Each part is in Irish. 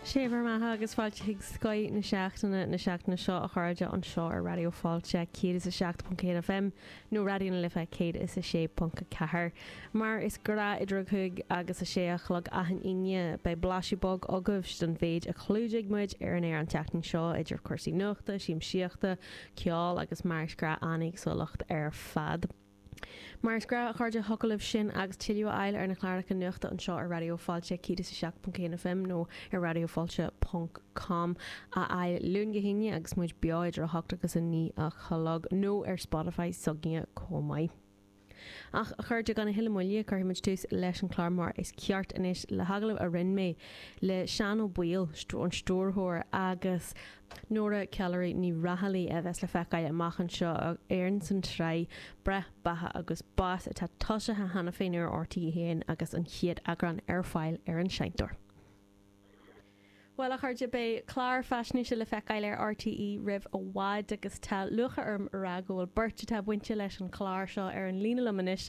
Sé bhur mbeatha agus fáilte chuig Scoith na Seachtaine na seachtaine seo, a chairde, anseo ar Raidió Fáilte 107.1 FM nó Raidió na Life 106.4. Mar is gnáth idir a cúig agus a sé a chlog achan Aoine, beidh blaiseadh beag agaibhse den mhéid a chlúdaigh muid ar an aer an tseachtain seo, idir cúrsaí nuachta, siamsaíochta, ceol agus, mar is gnáth, an-éagsúlacht ar fad. Mar is gnáth, a chairde, thiocfadh libh sin agus tuilleadh a fháil ar na cláracha nuachta anseo ar Raidió Fáilte 107.1 FM nó ar radiofailte ponc com a fháil Luan go hAoine agus muid beo idir 8 agus 9 a chlog nó ar Spotify s'againne chomh maith. Ach, a chairde, gan a thuilleadh moille, cuirfidh muid tús leis an chlár mar is ceart anois le hagallamh a rinne mé le Seán Ó Baoill, an stiúrthóir agus. Nora Calleary Ní Raghallaigh a bheas le feiceáil amach anseo ar an san tsraith Breith, Beatha agus Bás atá tosaithe cheana féin ar RTÉ 1 agus an chéad eagrán ar fáil ar an seinnteoir. Bhuel, a chairde, beidh clár faisnéise le feiceáil ar RTÉ roimh i bhfad agus tá lúcháir orm a rá go bhfuil beirt atá bainte leis an chlár seo ar an líne liom anois,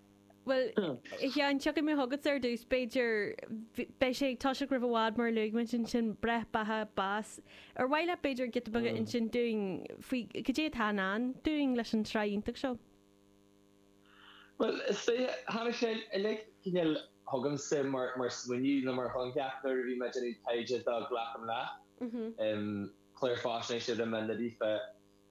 Bhuel, a Sheáin, tiocfaidh mé chugat ar dtús. B'fhéidir, beidh sé ag toiseacht roimh i bhfad, mar a luaigh muid ansin, breith, beatha, bás. Ar mhaith leat, b'fhéidir, giota beag a insint dúinn faoi cad é atá i ndán dúinn leis an tsraith iontach seo? Bhuel, is dóigh, tháinig sé uilig, cineál, chugamsa mar smaoineamh nó mar choincheap nuair a bhí mé ag déanamh taighde do Glacaim Leat, clár faisnéise a rinne mé a bhí fá.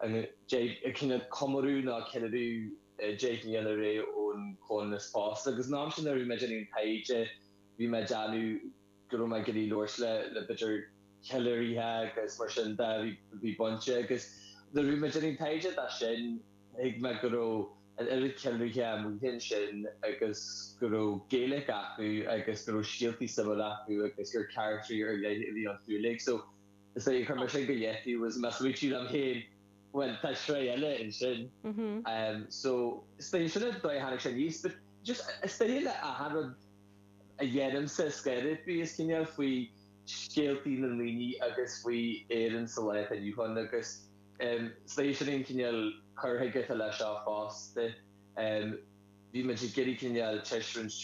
ag comóradh nó ag ceiliúradh deich mbliana ar aghaidh ón chomhionannas pósta. Agus an am sin nuair a bhí mé ag déanamh an taighde bhí mé ag déanamh go raibh mé ag iarraidh labhairt le le b'fhéidir ceiliúraithe agus mar sin de a bhí bhí bainte agus nuair a bhí mé ag déanamh an taighde dó sin thuig mé go raibh an oiread ceiliúraithe amuigh ansin agus go raibh Gaeilic acu agus go raibh scéaltaí suimiúla acu agus gur charachtraí ar leith a bhí iontu uilig. So. Is é a chuir mé sin go leataobh agus mé ag smaoineamh liom féin, bhuel tá sraith eile ansin. So is dóiche sin an dóigh a tháinig sé aníos but just is dóiche le achan rud a dhéanaimse scoir it be is cineál faoi scéaltaí na ndaoine agus faoi Éirinn sa lá atá inniu ann agus is dóiche sin an cineál cur chuige atá leis seo fosta. Bhí muid ag iarraidh cineál taispeáint.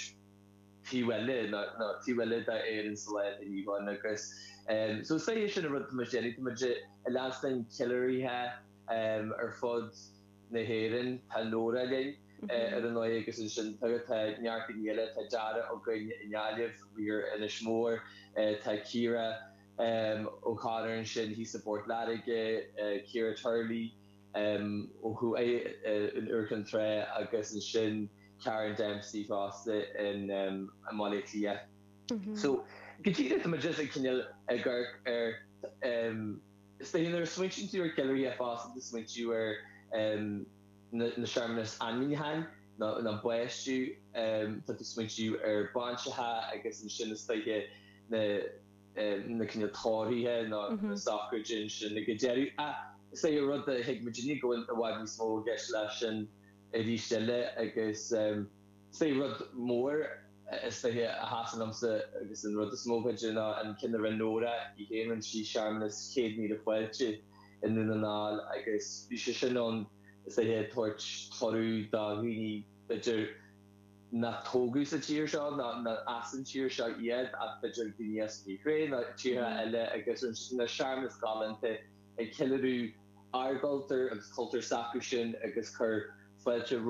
taobh eile nó taobh eile d'Éirinn sa lá atá inniu ann agus so is é sin an rud atá muid a dhéanamh, tá muid ag leanstan ceiliúraithe ar fud na hÉireann, tá Nóra linn ar ndóighe agus ansin tá neart daoine eile, tá Dara againn i nGaillimh, thiar ar Inis Mór, tá Ciara O'Connor ansin thíos i bPort Láirge, Ciara Turley. Chuaigh é in Iúr Chinn Trá agus ansin Karen Dempsey fosta in Baile Átha Cliath. So, cad é tá muid ag cineál ag amharc air is dóigh nuair a smaointíonn tú ar cheiliúraithe fosta tá tú ag smaointiú ar na searmanas ainmniúcháin nó an baisteadh, tá tú ag smaointiú ar bhainseacha agus ansin is dóiche na na cinn atá torthaithe nó sochraidí ansin ag an deireadh ach is é rud a thuig muidinne go bhfuil i bhfad níos mó i gceist leis sin arís eile agus is é rud mór is dóiche a sheasann liomsa agus an rud is mó b'fhéidir ná an ceann a rinne Nóra í féin rinne sí searmanas céad míle fáilte i nDún na nGall agus bhí sé sin ann is dóiche ag tabhairt cuireadh do dhaoine b'fhéidir nach tógadh sa tír seo nach as an tír seo iad ach b'fhéidir daoine as an Úcráin nó tíortha eile agus ansin na searmanas galánta ag ceiliúradh ár gcultúr agus cultúr s'acu sin agus cur fáilte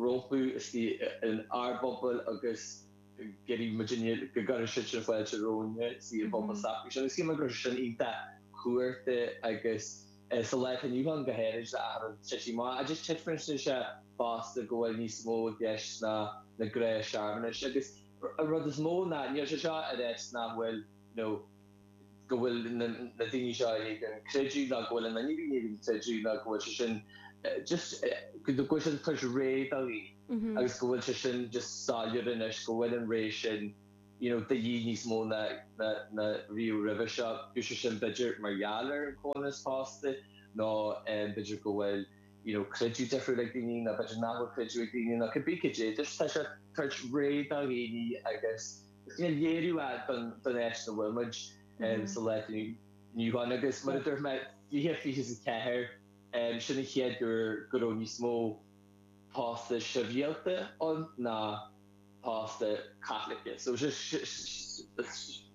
rompu istigh in ár bpobail agus gceilí muid inniu go gcuireann siadsan fáilte romhainne istigh i bpobail s'acu sin agus shíl mé go raibh sé sin iontach cumhachtach agus. Sa lá atá inniu ann go háirid a aithríonn sé sin. Má fhaigheadh tífidh sibh fosta go bhfuil níos mó i gceist ná na gnáthshearmanais, agus an rud is mó ná níl sé seo ag ráit nach bhfuil, nó go bhfuil na daoine seo in éadan creideamh nó go bhfuil an fhuinneamh in éadan creideamh nó go bhfuil sé sin just, go bhfuil sé ag tabhairt rogha do dhaoine agus go bhfuil sé sin just soiléir anois go bhfuil an rogha sin. you know, de dhíth níos mó ná ná riamh roimhe seo. Bíodh sé sin, b'fhéidir, mar gheall ar an comhionannas pósta, nó b'fhéidir go bhfuil, you know, creideamh difriúil ag daoine, nó b'fhéidir nach bhfuil creideamh ag daoine, nó cibé cad é, tá sé ag tabhairt rogha do dhaoine agus is cineál léiriú é don don áit ina bhfuil muid sa lá atá inniu ann. Agus mar a dúirt mé, 2024, sin an chéad uair go raibh níos mó pósta sibhialta ann ná pósta Caitliceach. So is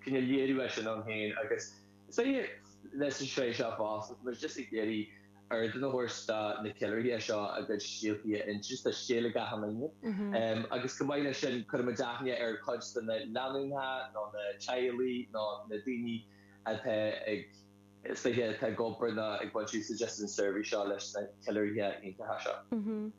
cineál léiriú é sin ann féin agus is féidir leis an sraith seo fosta, tá muid just ag iarraidh ardán a thabhairt do na ceiliúraithe seo a gcuid scéaltaí a insint, tá scéal ag achan duine agus chomh maith leis sin cuireann muid aithne ar chuid de na lánúineacha nó na teaghlaigh nó na daoine atá ag, is, atá ag obair nó ag baint úsáid as an seirbhís seo leis na ceiliúraithe iontacha seo.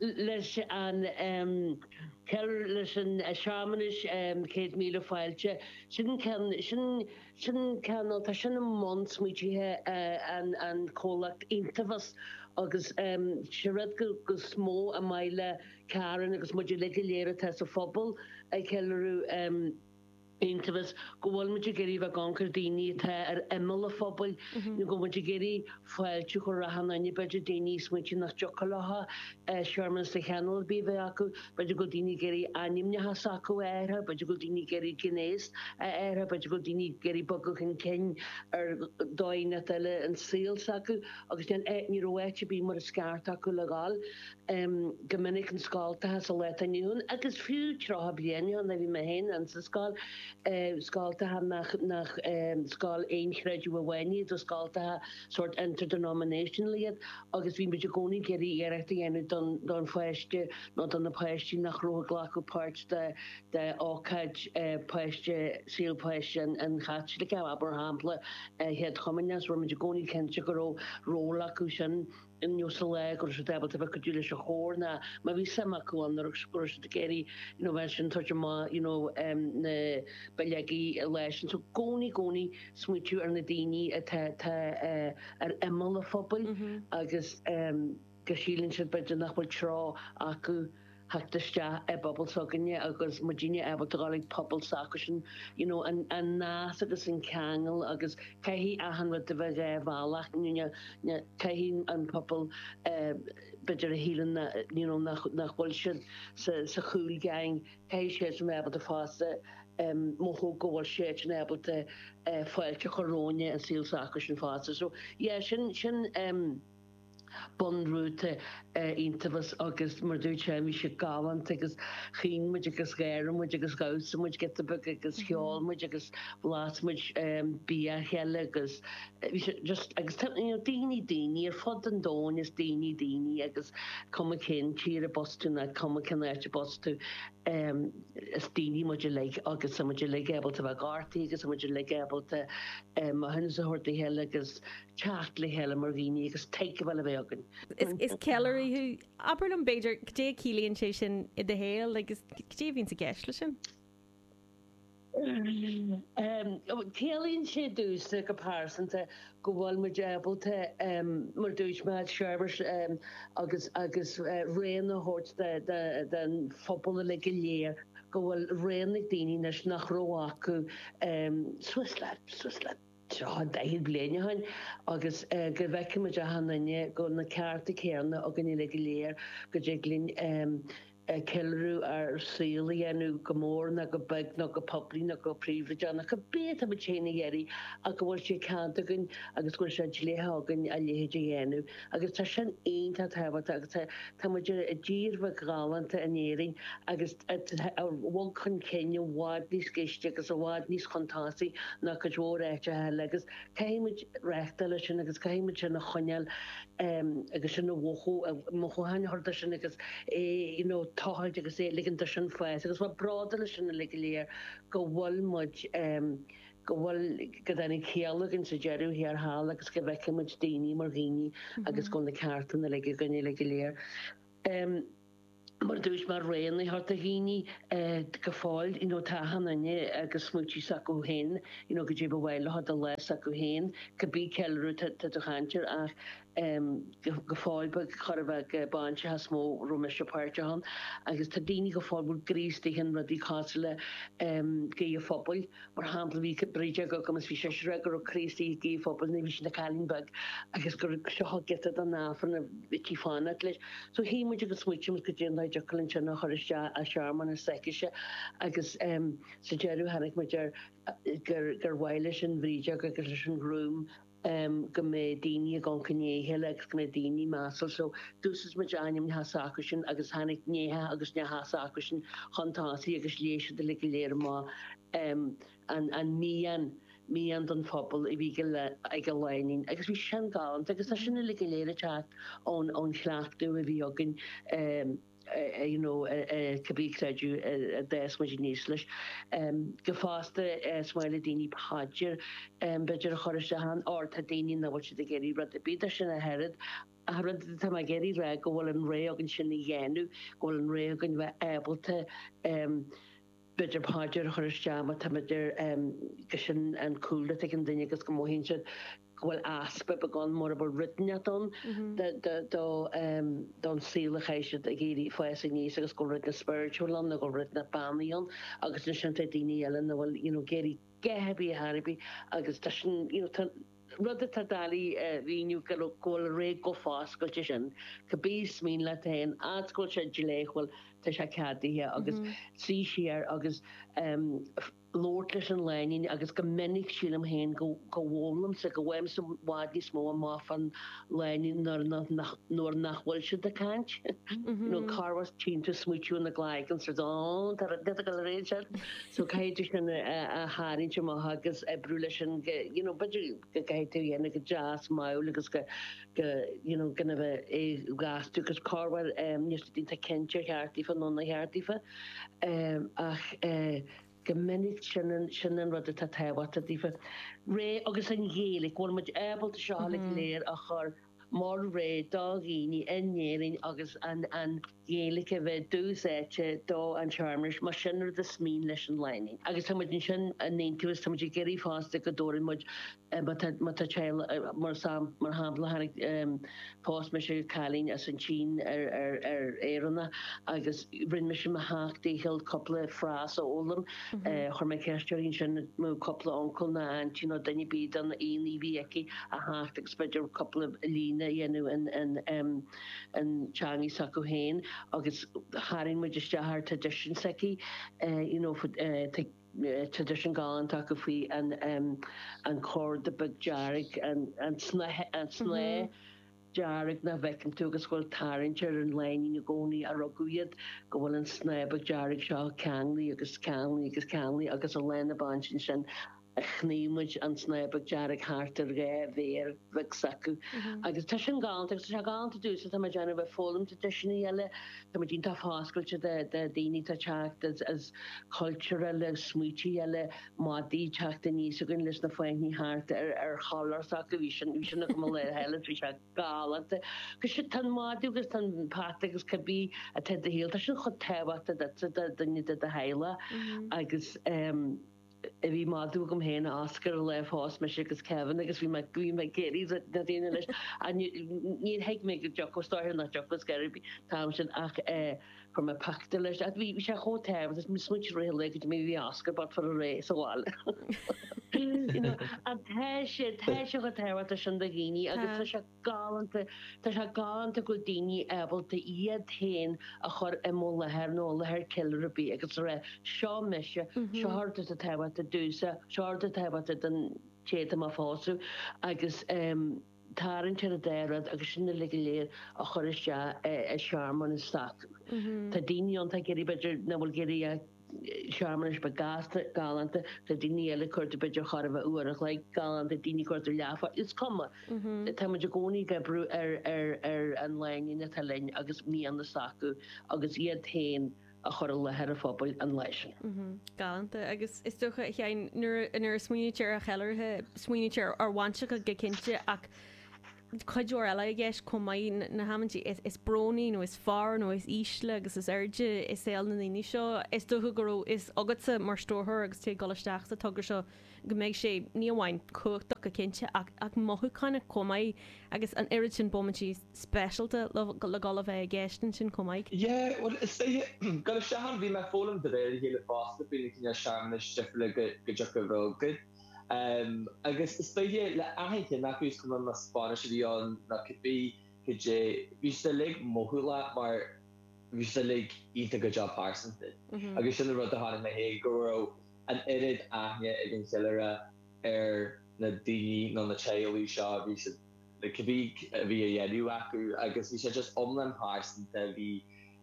leis an cheiliúradh, leis an searmanais, céad míle fáilte, sin ceann, sin, sin ceann, nó tá sin i mbun smaoitithe an comhlacht Entheos agus sé rud go, go is mó ba mhaith le Karen agus muid uilig go léir atá sa phobal ag ceiliúradh, Entheos go bhfuil muid ag iarraidh a bheith gann ar daoine atá ar imeall an phobail nó go bhfuil muid ag iarraidh fáilte a chur roimh achan duine, b'fhéidir daoine a smaointigh nach dtiocfadh leo searmanas de chineál ar bith a bheith acu, b'fhéidir go bhfuil daoine ag iarraidh ainmneacha s'acu a athraithe, b'fhéidir go bhfuil daoine ag iarraidh gnéas a athraithe, b'fhéidir go bhfuil daoine ag iarraidh bogadh chun cinn ar dóigh inteacht eile an saol s'acu agus ní raibh áit ar bith mar is ceart acu le dhul. go minic i scoltacha sa lá atá inniu ann agus fiú tríocha bliain ó shin nuair a bhí mé féin insa scoil, scoltacha nach scoil aonchreidimh amháin iad ach scoltacha sórt interdenominational iad agus bhí muid i gcónaí ag iarraidh iarracht a dhéanamh don pháiste nó do na páistí nach raibh ag glacadh páirt de ócáid páiste, saol páiste an Chaitliceach, abair, mar shampla, a chéad chomaoineach, so rinne muid i gcónaí cinnte go raibh ról acusan. insa lá go raibh siad ábalta bheith ag cuidiú leis an chór ná má bhí suim acu ann, go raibh go raibh siad ag iarraidh you know mar sin tabhairt amach you know um na bileogaí an lá sin. So gcónaí gcónaí ag smaointiú ar na daoine atá atá eh ar imeall a phobail agus eh go síleann siad b'fhéidir nach bhfuil tráth acu theacht isteach i bpobal s'againne agus muidinne ábalta dhul chuig pobal s'acusan, you know, an an nasc agus an ceangal agus caithfidh achan rud a bheith dhá bhealach, you know, caithfidh an pobal eh b'fhéidir a shíleann na you know nach nach bhfuil siad sa sa cool gang, caithfidh siadsan bheith ábalta fosta em mothú go bhfuil siadsan ábalta eh fáilte a chur romhainne an saol s'acusan fosta. So yeah sin sin em. bunrúta Entheos agus mar a dúirt sé bhí sé galánta agus chaoin muid agus gháir muid agus dhamhsaigh muid giota beag agus cheol muid agus bhlas muid bia a chéile agus bhí sé just agus tá you know daoine daoine ar fud an domhain is daoine daoine agus cuma cén tír arb as tú ná cuma cén áit arb as tú is daoine muid uilig agus tá muid uilig ábalta bheith gortaithe agus tá muid uilig ábalta maithiúnas a thabhairt dá chéile agus teacht le chéile mar dhaoine agus tuigbheáil a bheith againn. Is ceiliúraí thú. Abair liom, b'fhéidir, caidé a chiallaíonn sé sin i do shaol agus caidé a bhíonns i gceist leis sin? Ciallaíonn sé domhsa, go pearsanta, go bhfuil muid ábalta, mar a dúirt mé, seirbhís agus rogha a thabhairt don phobal uilig go léir, go bhfuil rogha ag daoine anois nach raibh acu. Swiss lad, Swiss lad. tríocha daichead bliain ó shin agus go bhfeicfimid achan duine go bhfuil na cearta céanna againn uilig go léir, go dtig linn ceiliúradh ár saol a dhéanamh, go mór nó go beag, nó go poiblí nó go príobháideach, cibé atáimid féin ag iarraidh ach go bhfuil sé ceadaithe againn agus go bhfuil sé dleathach againn a leithéid a dhéanamh. Agus tá sin iontach tábhachtach agus táimid i dtír bheag ghalánta in Éirinn agus. a bhog chun cinn i bhfad níos gaiste agus i bhfad níos suntasaí ná cuid mhór áiteacha eile agus caithfidh muid reachtáil leis sin agus caithfidh muid sin a choinneáil agus sin a mhothú, mo dhóthain a chur de sin agus é tochailt agus é ligint do sin fás agus bheith bródúil as sin uilig go léir go bhfuil muid, go bhfuil, go dtáinig ciall againn sa deireadh thiar thall agus go bhfeiceann muid daoine mar dhaoine agus go bhfuil na cearta uilig againn uilig go léir. mar a dúirt Mairéad thart daoine go fóill you know tá achan duine agus smaoití s'acu féin you know caidé ba mhaith leo do lá s'acu féin cibé ceiliúradh atá tú ag caint air ach em go go fóill ba chóir a bheith gur bainiseacha is mó a raibh mise páirteach ann agus tá daoine go fóill a bhfuil a gcroí istigh in rudaí cosúil le em guí an phobail Mar shampla, bhí brídeog agam is bhí sise ag rá go raibh a croí istigh i nguí an phobail nuair a bhí sí ina cailín beag agus gur seo an giota den Aifreann a bhíodh sí ag fanacht leis. So shuigh muid agus smaoitigh muid caidé an dóigh a dtiocfadh linn sin a chur isteach i searmanas s'aicise agus sa deireadh tháinig muid ar gur mhaith leis an bhrídeog agus leis an ghrúm em, go mbeidh daoine ionraic lena chéile agus go mbeidh daoine measúil. So, d'úsáid muid ainmneacha s'acusan agus tháinig nianna agus neachtanna s'acusan chun tosaigh agus léigh siad uilig go léir mo, em, an, an mian, mian don phobal a bhí ag an, ag an lánúin agus bhí sé sin galánta agus tá sin uilig go léir ag teacht ón, ón chleachtadh a bhí againn, em. you know cibé creideamh a d'fhás muid aníos leis go fosta is maith le daoine paidir b'fhéidir a chur isteach ann or tá daoine nach bhfuil siad ag iarraidh rud ar bith de sin ach oiread ach rud atá mé ag iarraidh a rá go bhfuil an rogha againn sin a dhéanamh go bhfuil an rogha againn bheith ábalta b'fhéidir paidir a chur isteach má tá b'fhéidir gur sin an cúlra atá ag an duine agus go mothaíonn siad go bhfuil easpa beagán, mura bhfuil rud inteacht ann don saol a chaith siad ag iarraidh fás aníos agus go bhfuil rud inteacht spiritual ann nó go bhfuil rud inteacht beannaithe ann agus ansin tá daoine eile nach bhfuil you know ag iarraidh a dhath ar bith ar chor ar bith agus tá sin you know tá rud atá mé ag iarraidh a mhíniú go bhfuil rogha chomh foscailte sin cibé is mian leat féin fhad is go bhfuil sé dleathach go bhfuil tá sé ceadaithe agus trí siar agus labhairt leis an lánúin agus go minic sílim féin go bhfoghlaimse, go bhfaighimse i bhfad níos mó amach fán lánúin nuair nach, nuair nach bhfuil siad ag caint. You know, Carghas tiontú, smaoitiú na gcloigeann, sort of, oh, tá rud eile go réidh sin. So caithfidh tú sin a tharraingt amach agus oibriú leis sin, you know, b'fhéidir go gcaithfidh tú dhéanamh go deas mall agus go, go gcinnfidh sé gach dúchas corruair níl siad iontach cinnte ar cheart daofa nó nár cheart daofa ach go minic sin an rud atá tábhachtach daofa. Rogha agus an Ghaeilic, go bhfuil muid ábalta seo uilig go léir a chur mar rogha do dhaoine in Éirinn agus an Gaeilic a bheith úsáidte don tsearmanas, más sin rud is mian leis an lánúin. Agus tá muid ansin in Aonturas, tá muid ag iarraidh fosta go dtabharfaidh muid, má tá, má tá teaghlaigh, mar sam, mar shampla tháinig, phós mise cailín as an tSín ar, ar, ar Éireannach agus rinne mise mo sheacht dícheall cúpla frás a fhoghlaim, chuir mé ceist uirthi ansin an raibh cúpla uncail ná aintín nó duine ar bith de na haíonna a bhí aici, a theacht agus b'fhéidir cúpla líne a dhéanamh in, in, an teangaidh s'acu féin agus tharraing muid isteach an tradition s'aici, you know, tá tradition galánta acu faoi an corda beag dearg, an snáth dearg nach bhfeiceann tú agus a bhfuil tarraingt ar an lánúin i gcónaí, ó rugadh iad, go bhfuil an snáth beag dearg seo ceanglaí agus ceanglaí agus ceanglaí agus ar lá na bainse ansin. Shnaidhm muid an snáth beag dearg thart ar dhá mhéar bheag s'acu agus tá sin galánta agus tá sé galánta dúinn so tá muid in ann a bheith ag foghlaim traidisiúin eile. Tá muid iontach foscailte do dhaoine atá ag teacht as cultúir eile, as smaoití eile, madaí ag teacht aníos againn leis na fáinní thart ar chollar s'acu, bhí sin agam an lá cheana so bhí sé galánta. Tá sé, tá an madadh agus tá an peata agus cibé atá i do shaol, tá sin chomh tábhachtach duitse, do dhuine de do theaghlach agus. a bhí madadh agam féin, a Oscar, an lá a phós mise agus Kevin agus bhí mé ag iarraidh do na daoine leis ach níor thuig mé go dtiocfadh, is dóiche nach dtiocfadh is gairid a bhí an t-am sin ach chuir mé pictiúr leis ach bhí sé chomh tábhachtach sin is smaointigh mé i rith an lae goidé mar a bhí Oscar bocht a ré sa bhaile. You know, ach tá sé, tá sé chomh tábhachtach sin do dhaoine agus tá sé. galánta. Tá sé galánta go bhfuil daoine ábalta iad féin a chur i mo láthair nó i láthair ceiliúraí ar bith agus a rá, seo mise, seo rud atá tábhachtach domhsa, seo rud atá tábhachtach don té atá mé a phósadh agus tarraingt ar an dá rud agus sin uilig go léir a chur isteach i searmanas. Tá daoine ann atá ag iarraidh b'fhéidir nach bhfuil ag iarraidh a. searmanais, beag gasta galánta tá daoine eile cur do b'fhéidir chóir a bheith uair an chloig, galánta daoine cur do leathfháil, is cuma, tá muid i gcónaí ag oibriú ar an lánúin atá linn agus mianta s'acu agus iad féin a chur i láthair an phobail an lá sin. Galánta, agus is dócha, a Sheáin, nuair a smaoinítear ar cheiliúraithe, smaoinítear ar bhainiseacha go cinnte, ach. cuid mhór eile i gceist chomh maith, na hamanntaí is brónaí nó is fearr nó is ísle agus is airde i saol na ndaoine seo. Is dócha go raibh fhios agatsa mar stiúrthóir agus tú ag dul isteach sa togra seo go mbeidh sé, ní amháin cumhachtach go cinnte, ach ach mothúchánach chomh maith agus an oiread sin bomaití speisialta le dhul a bheith i gceist ansin chomh maith. Yeah, bhuel is dóigh, dul isteach ann bhí mé ag foghlaim de réir a chéile fosta faoi na cineál searmanais difriúla go dtiocfadh a bheith againn. Agus is dóiche le haithint nach is cuma más bainis a bhí ann nó cibé, cad é, bhí siad uilig mothálach mar bhí siad uilig iontach go deo pearsanta. Agus sin an rud a chonaic mé fhéin, go raibh an oiread aithne ag an cheiliúraí ar na daoine nó na teaghlaigh seo, bhí siad, cibé a bhí á dhéanamh acu agus bhí sé just iomlán pearsanta, bhí.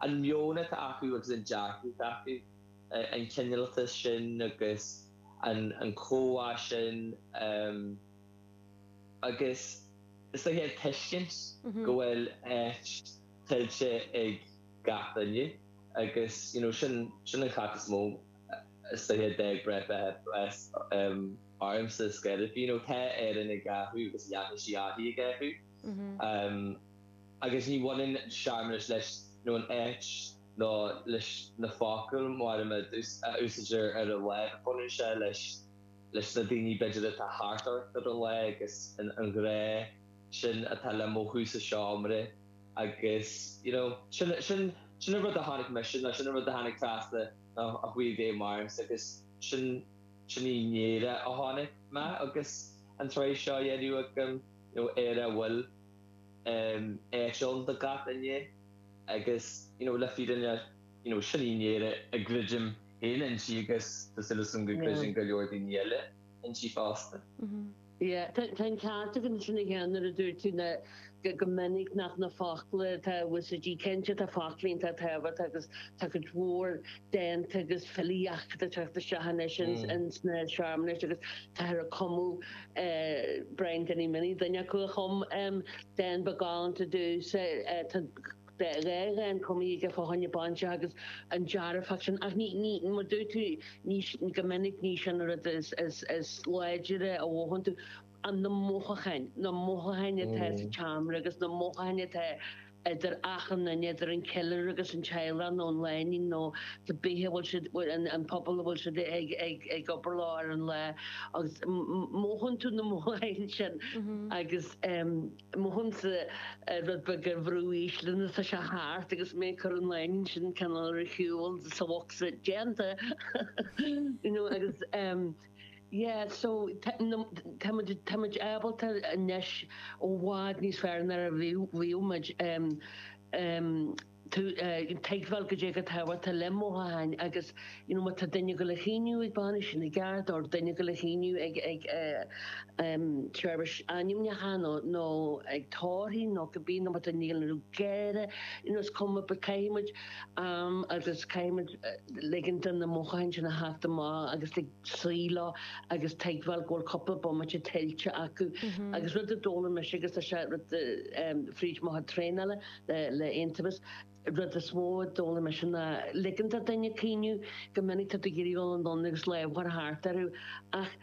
an meon atá acu agus an dearcadh atá acu, an cineáltas sin agus an chomhbhá sin agus is dóiche an tuiscint go bhfuil áit tuillte ag gach duine agus you know sin an ceacht is mó is dóiche a d'fhág breith breis ormsa is gaire you know tá Éirinn ag athrú agus leanfaidh sí uirthi ag athrú. Agus ní bhaineann an searmanas leis, nó an áit, nó leis na focail mhóra a úsáidtear ar an lá. Baineann sé leis, leis na daoine, b'fhéidir, atá thart ort ar an lá, agus an grá sin atá le mothú sa seomra. Agus, you know, sin, sin, sin an rud a chonaic mise, nó sin an rud a tháinig trasna a chuaigh i bhfeidhm ormsa, agus sin, sin í an Éire a chonaic mé agus an tsraith seo á dhéanamh agam, you know, Éire a bhfuil. Áit ann do gach éinne agus le fírinne sin í an Éire a gcreidim féin inti agus tá súil agam go gcreideann go leor daoine eile inti fosta. Tá an ceart agat ansin a Sheáin nuair a dúirt tú go minic nach na focla atá in úsáid, go cinnte, tá focla iontach tábhachtach agus tá cuid mhór dánta agus filíocht ag teacht isteach anois ins na searmanais agus táthar ag cumadh Brian Danny Minnie, duine acu a chum dán beag galánta domhsa, tá dhá dhán cumtha aige fá choinne bainiseacha agus an dearfach sin ach ní, ní, mar dúirt tú, ní, go minic ní sin an rud is, is, is láidre a mhothaíonn tú. an na mothúcháin, na mothúcháin atá sa tseomra agus na mothúcháin atá idir achan duine, idir an ceiliúraí agus an teaghlach nó an lánúin nó cé bith a bhfuil siad, an pobal a bhfuil siad ag obair leo ar an lá agus mothaíonn tú na mothúcháin sin agus mothaímse rud beag ar bhrú ísle nuair atá sé thart agus mé ag cur an lánúin sin cineál ar shiúl sa bhocsa déanta you know agus. Yeah so táimid ábalta anois ó i bhfad níos fearr ná a bhí muid. Tuigbheáil goidé chomh tábhachtach le mothúcháin agus you know má tá duine ag gabháil a chaoineadh ag bainis sin i gceart or duine ag gabháil a chaoineadh ag seirbhís ainmniúcháin nó ag tórramh nó cibé nó má tá duine ag gáire you know is cuma but caithfimid am agus caithfimid ligean do na mothúcháin sin a theacht amach agus a scaoileadh agus tuigbheáil go bhfuil cúpla bomaite tuillte acu. Agus rud a d'fhoghlaim mise, agus tá sé rud fríd mo chuid traenála le Aontumhas, rud is mó a d'fhoghlaim mise ná ligint do dhuine caoineadh, go minic tá tú ag iarraidh dul anonn agus lámh a chur thart orthu ach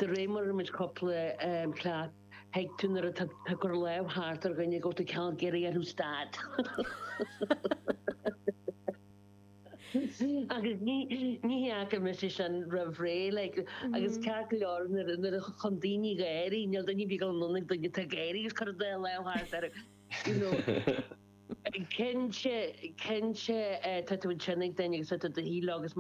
De réir mar imid cúpla plát, thuig tú nuair atá tú ag cur lámh thart ar dhuine go raibh tú cineál ag iarraidh orthu stad. Agus ní ní fhaca mise sin roimh ré, like, agus ceart go leor nuair a nuair a chíonn tú daoine ag gáire, níl duine ar bith ag gabháil anonn ag duine atá ag gáire is ag cur a lámh thart orthu, you know. Cinnte, cinnte, tá tú ansin ag duine agus tá tú i do shuí leo agus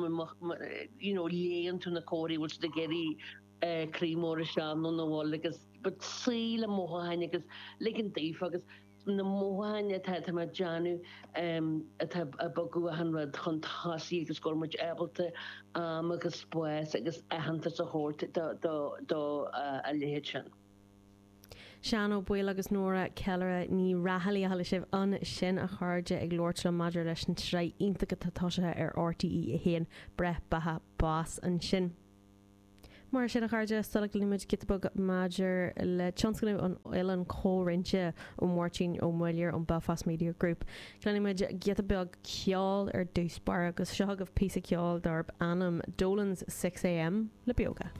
you know léann tú na comharthaí, bhfuil siad ag iarraidh croí mór isteach nó nach bhfuil agus but suí le mothúcháin agus ligint daofa agus na mothúcháin atá tá mé ag déanamh atá ag bogadh achan rud chun tosaigh agus go bhfuil muid ábalta am agus spás agus aitheantas a thabhairt do a leithéid sin. Seán Ó Baoill agus Nóra Ceiliúraí Ní Raghallaigh a chuala sibh ansin a chairde ag labhairt liom maidir leis an tsraith iontach atá tosaithe ar RTE 1, Breith, Beatha, Bás ansin. Mar sin a chairde, sula gcluinimid giota beag maidir le tionscnamh an Oileáin Chomhroinnte ó Mháirtín Ó Muilleoir ón Belfast Media Group, cluinimid giota beag ceoil ar dtús báire agus seo chugaibh píosa ceoil darb ainm Dolan's Six A.M. le Beoga.